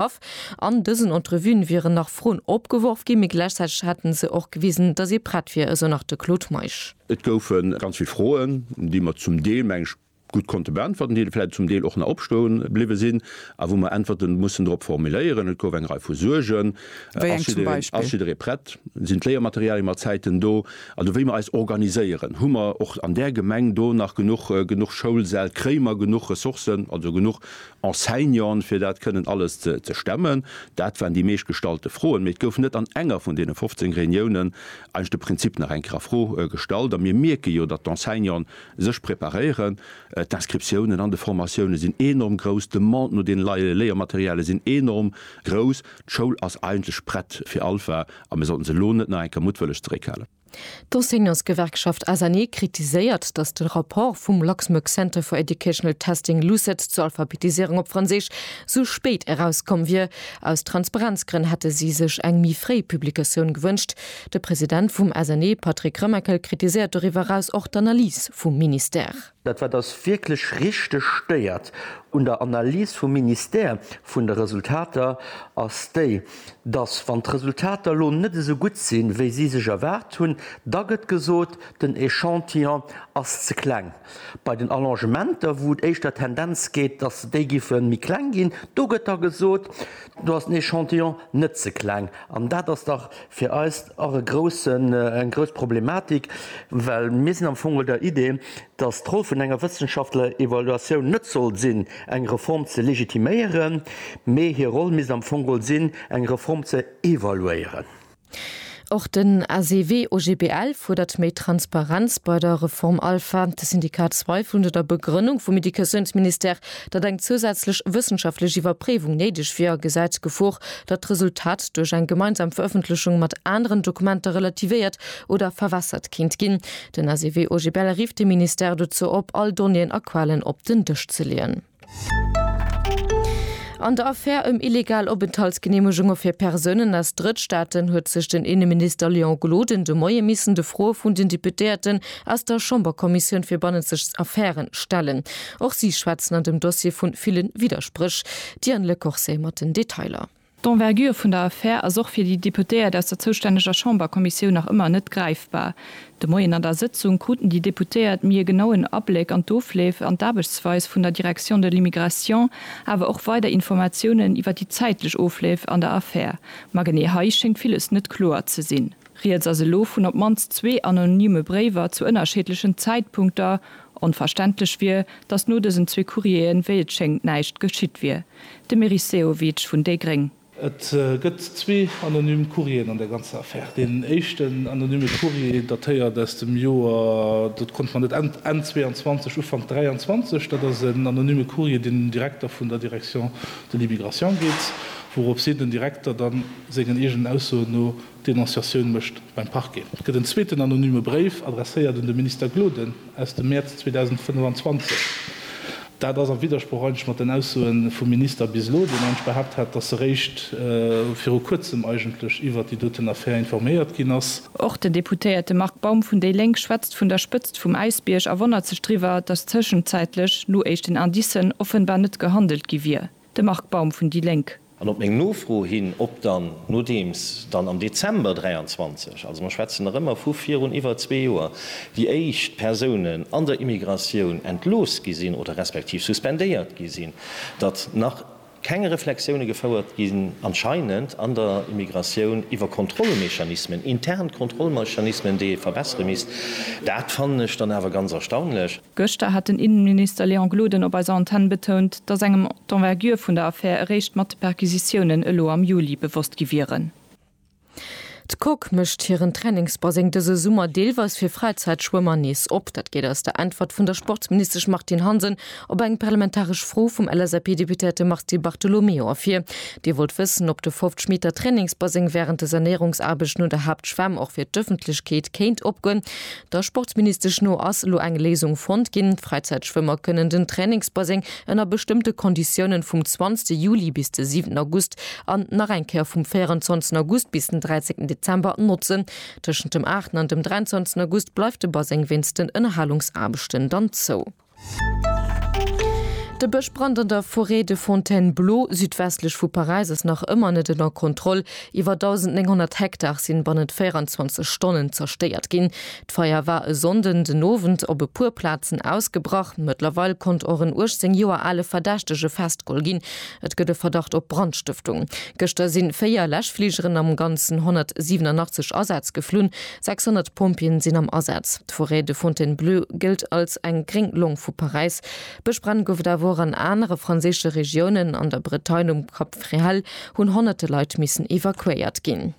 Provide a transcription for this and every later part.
Of. An dësen Entrevuen wieren nach Froen opgeworf ginn, mee gläichzäiteg hätten se och gewisen, datt ee prett wier, esou nach de Claude Meisch. Et goufe ganz vill Froen, déi mer zum Deel, meng ech, gutt konnte beäntwerten, déi vläicht zum Deel och nach opstoe bliwwe sinn a wou mer Äntwerte mussen drop formuléieren. Et gouf eng Rei vu Suergen. Wéi eng zum Beispill? Ass jidderee prett? Sinn d'Léiermaterialien mat Zäiten do? Also wéi mer eis organiséieren. Hu mer och an där Gemeng do nach genuch Schoulsäll? Kréie mer genuch Ressourcen, also genuch Enseignanten, fir dat kënnen alles ze stemmen? Dat waren déi meescht gestallte Froen. Mee et gouf net an enger vun deene 15 Reuniounen eigentlech de Prinzip nach eng Kéier a Fro gestallt. A mir mierke jo, datt d'Enseignanten sech preparéieren. D'Inscriptiounen an de Formatioune sinn enorm grouss. D'Demande no deene neie Léiermaterialie sinn enorm grouss. D'Schoul ass eigentlech prett fir Alpha a mir sollten se elo net nach eng Kéier muttwëlleg zeréckhalen. D'Enseignantsgewerkschaft ASANE kritiséiert, datt de Rapport vum Luxembourg Centre for Educational Testing, LUCET, zur Alphabetiséierung op Franséisch sou spéit erauskomm wier. Aus Transparenzgrënn hätte si sech eng méi fréi Publikatioun gewënscht. De President vum ASANE, Patrick Remakel, kritiséiert doriwwer eraus och d'Analys vum Ministère. Dat wat eis wierklech richteg stéiert un der Analys vum Ministère vun de Resultater ass déi, dass wann d'Resultater elo net esou gutt sinn, wéi si sech erwaart hunn, da gëtt gesot, den Echantillon ass ze kleng. Bei den Allongementer, wou et éischter Tendenz gétt, dass se déi giffe méi kleng ginn, do gëtt da gesot, do ass den Echantillon net ze kleng. An dat ass dach Fir eis och e groussen, eng grouss Problematik, well mir sinn am Fong der Idee, dass d'Roll vun enger wëssenschaftlecher Evaluatioun net soll sinn, eng Reform ze legitiméieren, mee hir Roll misst am Fong sinn, eng Reform ze evaluéieren. Och den ACW-OGBL fuerdert méi Transparenz bei der Reform Alpha. De Syndikat Zweifel un der Begrënnung vum Educatiounsministère, Datt eng zousätzlech wëssenschaftlech Iwwerpréiwung néideg wier, gesäit d'Gefor, datt d'Resultat duerch eng gemeinsam Verëffentlechung mat aneren Dokumenter relativéiert oder verwässert kéint ginn. Den SEW-OGBL rifft de Ministère dozou op, all Donnéeën a Quellen op den Dësch ze leeën. An der Affär ëm illegal Openthaltsgeneemegunge fir Persounen aus Drëttstaaten huet sech den Inneminister Léon Gloden de Moie missen de Froe vun den Deputéierten aus der Chamberkommissioun fir bannenzeg Affäre stellen. Och si schwätzen an dem Dossier vu ville Widderspréch. D'Diane Lecorse mat den Detailer. D'Envergure vun der Affär ass och fir déi Deputéiert aus der zoustänneger Chamberkommissioun nach ëmmer net gräifbar. De Moien an der Sëtzung kruten déi Deputéiert méi e genauen Abléck an d'Ofleef an d'Aarbechtsweis vun der Direction de l'Immigration, awer och weider Informatiounen iwwer déi zäitlech Ofleef an der Affär. Ma genee hei schéngt villes net kloer ze sinn. Rieds ass elo vun op d'mannst zwee anonyme Bréiwer zu ënnerscheedlechen Zäitpunkter. Onverständlech wier, datt no dësen zwee Courrieren, wéi et schéngt, näischt geschitt wier. De Meris Sehovic vun déi gréng. Et gëtt zwee anonym Courrieren an der ganzer Affär. Deen éischten anonyme Courrier datéiert aus dem Joer, dat konnt mer net, Enn 22, Ufank 23. Dat ass en anonyme Courrier, deen un den Direkter vun der Direction de l'Immigration geet, wouropshi den Direkter da sengen eegenen Aussoen no Denonciatioun mécht beim Parquet. Et gëtt en zweeten anonyme Bréif, adresséiert un de Minister Gloden, aus dem Mäerz 2025. Dat ass a Widdersproch eigentlech mat den Aussoe vum Minister bis elo, deen eigentlech behaapt hat, datt e réischt viru kuerzem eigentlech iwwert déi doten Affär informéiert ginn ass. Och den Deputéierte Marc Baum vun déi Lénk schwätzt vun der Spëtzt vum Äisbierg a wonnert sech driwwer, datt tëschenzäitlech no éischten Indicen offenbar net gehandelt gi wier. De Marc Baum vun déi Lénk. An op meng Nofro hin, ob dann, nodeems dann am Dezember 23, also mer schwätzen nach ëmmer vu virun iwwer zwee Joer, déi éischt Persounen an der Immigratioun entlooss gi sinn oder respektiv suspendéiert gi sinn, datt nach keng Reflexioune gefouert ginn anscheinend an der Immigratioun iwwer Kontrollmechanismen, intern Kontrollmechanismen, déi ee verbessere misst. Dat fannen ech dann awer ganz erstaunlech. Gëschter hat den Innenminister Léon Gloden op eiser Antenn betount, datt engem d'Envergure vun der Affär eréischt mat de Perquisitiounen elo am Juli bewosst gi wieren. D'Coque mécht hiren Trainingsbaseng dëse Summer deelweis fir Fräizäitschwëmmer nees op. Dat geet aus der Äntwert vun der Sportsministesch Martine Hansen op eng parlamentaresch Fro vum LSAP-Deputéierte Mars Di Bartolomeo ervir. Dee wollt wëssen, ob de Fofftschmiedter Trainingsbaseng wärend de Sanéierungsaarbechten un der Haaptschwämm och fir d'Ëffentlechkeet kéint opgoen. Der Sportsministesch no ass elo eng Léisung fonnt ginn. D'Fräizäitschwëmmer kënnen den Trainingsbaseng ënner bestëmmte Konditiounen vum 20 Juli bis de 7 August an nach eng Kéier vum 24 August bis den 13 Dezember notzen. Tëschent dem 8 an dem 23 August bleift de Baseng wéinst den Ënnerhalungsaarbechten dann zou. De Bëschbrand an der Forêt de Fontainebleau, südwestlech vu Paräis, ass nach ëmmer net ënner Kontroll. Iwwer 1.900 Hektar sinn bannent 24 Stonnen zerstéiert ginn. D'Feier war e Sonnden den Owend op e puer Plazen ausgebrach. Mëttlerweil konnt och en 18 Joer ale Verdächtege festgeholl ginn. Et gëtt e Verdacht op Brandstëftung. Gëschter sinn véier Läschfligeren am Ganzen 187 Asätz geflunn. 600 Pompjeeën sinn am Asaz. D'Forêt de Fontainebleau gëllt als eng gréng Long vu Paräis. Bëschbränn gouf et awer och an anere franséische Regiounen. An der Bretagne um Cap Fréhel hunn honnerte Leit missen evakuéiert ginn.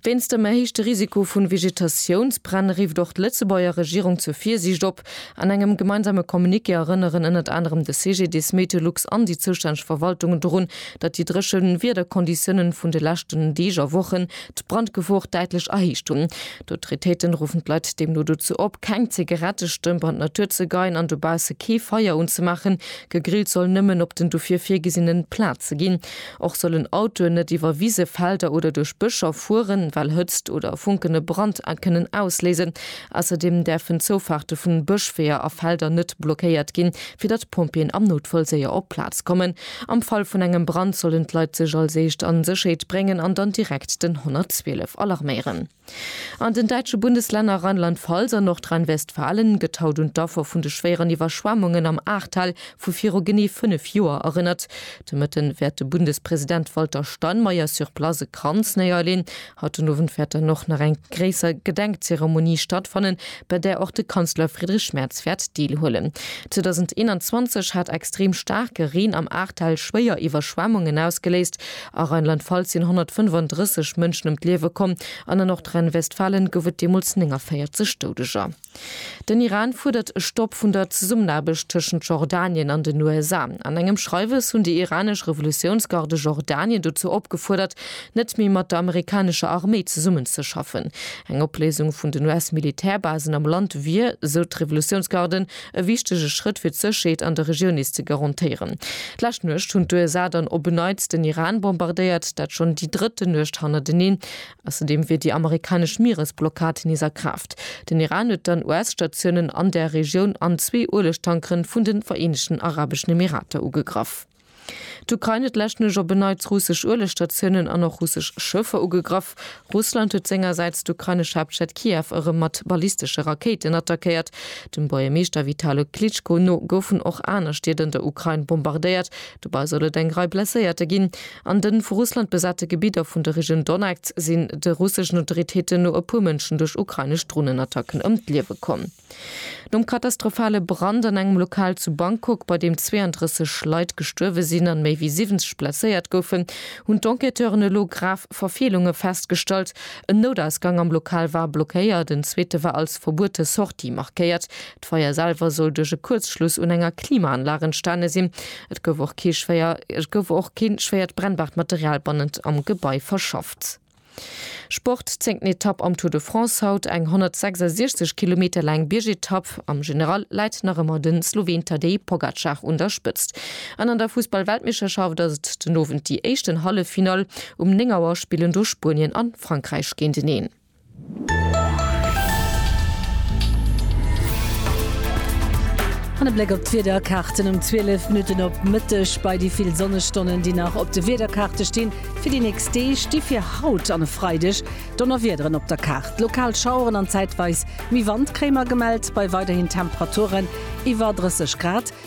Wéinst dem erhéichte Risiko vu Vegetatiounsbränn rifft och d'Lëtzebuerger Regierung zur Virsiicht op. An engem gemeinsame Communiqué erënneren ënnert anerem de CGDIS, Meteolux an déi zoustänneg Verwaltungen dorun, datt déi dréche Wiederkonditiounen vun de leschten Deeg a Wochen d'Brandgefor däitlech erhéicht hunn. D'Autoritéiten ruffen d'Leit deemno dozou op, keng Zigarettestëmp an d'Natur ze geien an dobausse kee Feier unzemaachen. Gegrillt soll nëmmen op den dofir virgesinnen Plaze ginn. Och sollen Autoen net iwwer Wise, Felder oder duerch Bëscher fueren, well Hëtzt oder Funken e Brand kënnen ausléisen. Ausserdeem däerfen d'Zoufaarte vun Bëschweeër a Felder net blockéiert ginn, fir datt d'Pompjeeën am Noutfall séier op d'Plaz kommen. Am Fall vun engem Brand sollen d'Leit sech als éischt an Sécherheet bréngen an dann direkt den 112 alarméieren. An den däitsche Bundeslänner Rheinland-Pfalz an Nordrhein-Westfalen gëtt haut un d'Affer vun de schwéieren Iwwerschwemmungen am Ahrtal vu viru genee 5 Joer erënnert. De Mëtten wäert de Bundespresident Walter Steinmeier sur place e Kranz néierleen Haut den Owend wäert dann och nach eng gréisser Gedenkzeremonie stattfannen, bei där och de Kanzler Friedrich Merz wäert deelhuelen. 2021 hat extrem staarke Reen am Ahrtal schwéier Iwwerschwemmungen ausgeléist. A Rheinland-Pfalz sinn 135 Mënschen ëm d'Liewe komm an an Nordrhein-Westfalen gouf et deemools 49 Doudeger. Den Iran fuerdert e Stopp vun der Zesummenaarbecht tëschent Jordanien an den USA. An engem Schreiwes hunn déi iranesch Revolutiounsgarde Jordanien dozou opgefuerdert, net méi mat der amerikanescher Arméi zesummenzeschaffen. Eng Opléisung vun den US-Militärbasen am Land wier, esou d'Revolutiounsgarde, e wichtege Schrëtt fir d'Sécherheet an der Regioun nees ze garantéieren. D'lescht Nuecht hunn d'USA dann op en Neits den Iran bombardéiert, dat schonn déi drëtten Nuecht hannerteneen. Ausserdeem wier déi amerikanesch Mieresblockad nees a Kraaft. Den Iran huet dann US-Statiounen an der Regioun an zwee Uelegtankeren vun den Vereenegten Arabeschen Emirater ugegraff. D'Ukrain huet leschtnech op en Neits russesch Uelegstatiounen an och russesch Schëffer ugegraff. Russland huet sengersäits d'ukrainesch Haaptstad Kiew erëm mat ballistesche Rakéiten attackéiert. Dem Buergermeeschter Vitalo Klitschko no goufen och aner Stied an der Ukrain bombardéiert, Dobei soll et eng Rei Blesséierte ginn. An den vu Russland besate Gebidder vun der Region Donetsk sinn de russeschen Autoritéiten no e puer Mënschen duerch ukrainesch Dronenattacken ëm d'Liewe komm. Nom katastrophale Brand an engem Lokal zu Bangkok, bei deem 32 Leit gestuerwe sinn an méi wéi 70 blesséiert goufen, hunn d'Enquêteuren elo grav Verfeelunge festgestallt. En Noutausgang am Lokal war blockéiert, en zweete war als verbuete Sortie markéiert. D'Feier selwer soll duerch e Kuerzschluss un enger Klimaanlag entstane sinn. Et gouf och kee schwéier, et gouf och keen schwéiert brennbaart Material bannent am Gebai verschafft. Sport, Zéngten Etapp am Tour de France haut, eng 166 Kilometer laang Biergetapp. Am General läit nach ëmmer de Sloween Tadej Pogacar un der Spëtzt. An an der Fussball-Weltmeeschterschaft ass et den Owend déi éischten Halleffinall. Um 9 Auer spillen do Spuenien an Frankräich géinteneen. An e Bléck op d'Wiederkaarten um 12 Minutten op Mëtteg. Bei déi vill Sonnestonnen, déi nach op de Wiederkaarte stinn fir déi nächst Deeg, sti fir haut an e Freideg Donnerwiederen op der Kaart. Lokal Schaueren an zäitweis méi Wand kréie mer gemellt, bei weiderhin Temperaturen iwwer 30 Grad.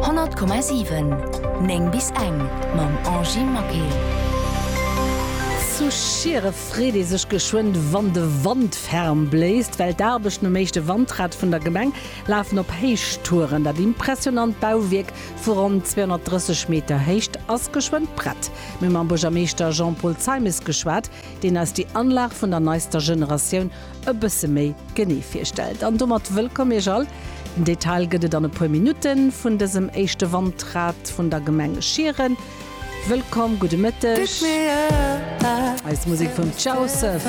100,7 9 bis eng mam Angy Maquet. Zu Schiere freet ee sech geschwënn, wann de Wand ferm bléist, well d'Aarbechten um éischte Wandrad vun der Gemeng lafen op Héichtouren. Dat impressionant Bauwierk vu ronn 230 Meter Héicht ass geschwënn prett. Mir hu mam Buergermeeschter Jean-Paul Zeimes geschwat, deen eis déi Anlag vun der neister Generatioun e bësse méi genee virstellt. An domat wëllkomm Iech all! Den Detail gëtt et an e puer Minutten vun dësem éischte Wandrad vun der Gemeng Schieren. Wëllkomm, gudde Mëtteg! Eis Musek vum Ciao Surf!